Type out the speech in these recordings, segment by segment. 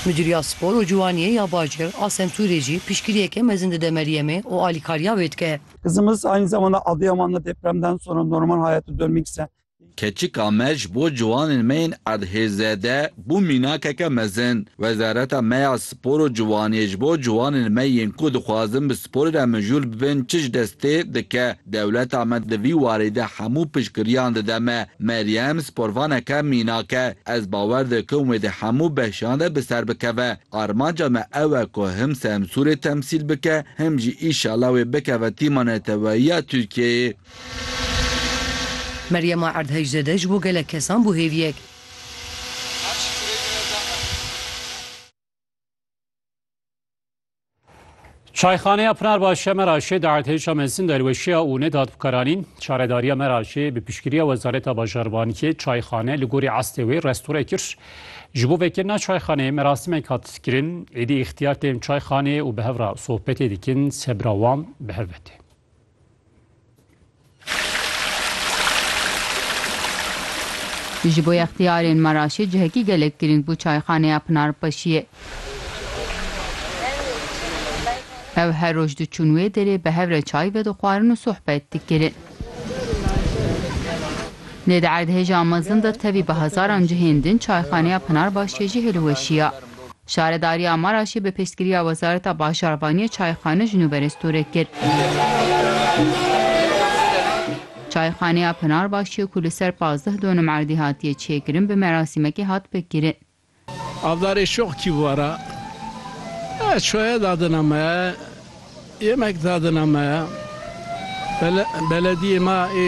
Midûriya Spor û Ciwaniyê ya Bajêr a Sentûrê jî piştgiriyeke mezin dide Meryemê û alîkariya wê dike. Kızımız aynı zamanda Adıyaman da depremden sonra normal hayatı dönmek isteyen Keçika me ji bo ciwanên me yên erdhêzede bû mînakeke mezin. Wezareta me ya Spor û Ciwaniyê ji bo ciwanên me yên ku dixwazin bi sporê re mijûl bibin çi ji destê dike? Dewleta me di vî warê de hemû piştgiriyan dide me. Meryem, sporvaneke mînak e. Ez bawer dikim wê di hemû behşan de bi ser bikeve. Armanca me ew e ku him Semsûrê temsîl bike, him jî îşala wê bikeve tîma neteweyiya Tirkiyeyê. Meryema Erdhejzade ji bo gelek kesan bû hêviyek. Çayxaneya Pınarbaşiya Meraşê di erdhêşa mezin de li weşiya û nedat bi karanîn. Çaredariya Meraşê bi piştgiriya Wezareta Bajarbaniyê çayxane li gorî estê wê restore kir. Ji bo vekirina çayxaneyê merasimek hat kirin. Êdî îxtiyar tên çayxaneyê û bi hev re sohbetê dikin sebira wan bi hev ve tê. Ji bo yextiyarên Meraşê cihekî gelek girîng bû çayxaneya Pinarpaşiyê. Ew her roj diçûn wê derê bi hev re çay vedixwarin û sohbet dikirin. Lê di erdhêja mezin de tevî bi hezaran cihên din çayxaneya Pinarbaşiyê jî hilweşiya. Şaredariya Maraşê bi piştgiriya Wezareta Bajarvaniyê çayxane ji nû berê stûrê kir. Çayxaneya Pınarbaşiye ku li ser pazdeh donim erdî hatiye çêkirin bi merasîmekê hat pêkkirin. Avdarê şox kî vara, Ez şoye dadina me. Yemek dadina me ya. Belediyê me ê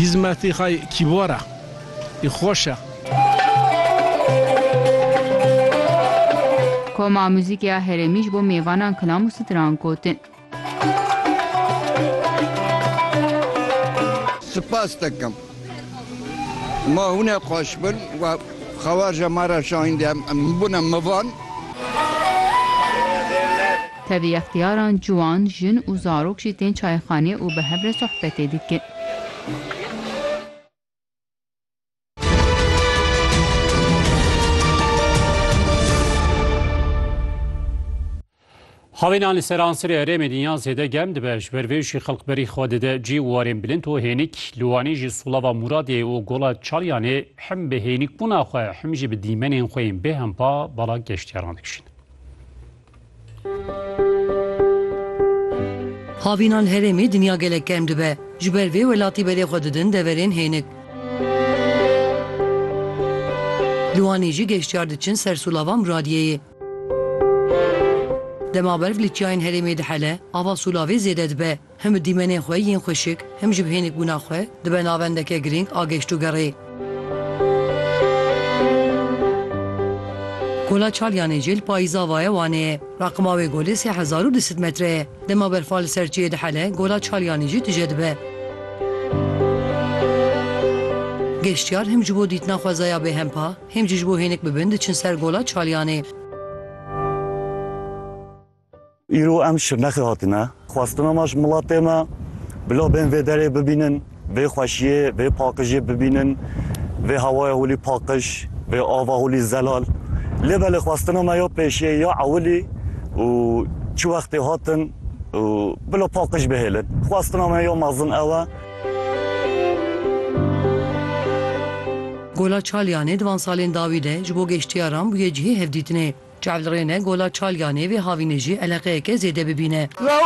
hîzmetî xwe kîbor e, ê xweş e. Koma Muzîkê ya Herêmî ji bo mêvanan kilam û stran gotin. Spas dikim. Ma hûne xweş bin we xewaja ma re şahîndiye em bûne mivan. Tevî extiyaran ciwan, jin û zarok jî tên çayxanê û bi hev re sohbetê dikin. Xwevênan li Seransirê herêmê dinya zêde germ dibe. Ji ber vê jî xelk berî xwe dide cî û warên bilind û hênik. Li Wanê jî Sulava Muradê û Gola Çalyanê him bi hênikbûna xwe him jî bi dîmenên xwe yên bêhempa bala geştyaran dikişînin. Xwevînan herêmê dinya gelek germ dibe. Ji ber vê welatî berê xwe didin deverên hênik. Li Wanê jî geştyar diçin ser Sulava Muradiyeyê. Dema berf li çiyayên herêmê dihele, ava sûlavê zêde dibe. Him bi dîmenên xwe yên xweşik, him jî bi hênikbûna xwe dibe navendeke girîng a geştûgerê. Kola Çalyanê jî li payîza va ye Wanê ye. Raqima wê golê sê hezar û du sed metre ye. Dema berfa li ser çiyê dihele, Gola Çalyanê jî tije dibe. Geştyar him ji bo dîtina xwezaya bêhempa, Hêm jî ji bo hênik bibin diçin ser Gola Çalyanê. Îro em Şirnexê hatine. Xwestina me ji miletê me bila bên vê derê bibînin, vê xweşiyê, vê paqijê bibînin, vê hewaya holî paqij, vê ava holî zelal. Lê belê xwestina me ya pêşiyê ya ewilî û çi wextê hatin û bila paqij bihêlin. Xwestina me ya mezin ew e. Gola Çalyanê di van salên dawî de ji bo geştiyaran bûye cihê hevdîtinê. Çavlirêne Gola Çalyanê vê havînê jî eleqeyeke zêde bibîne.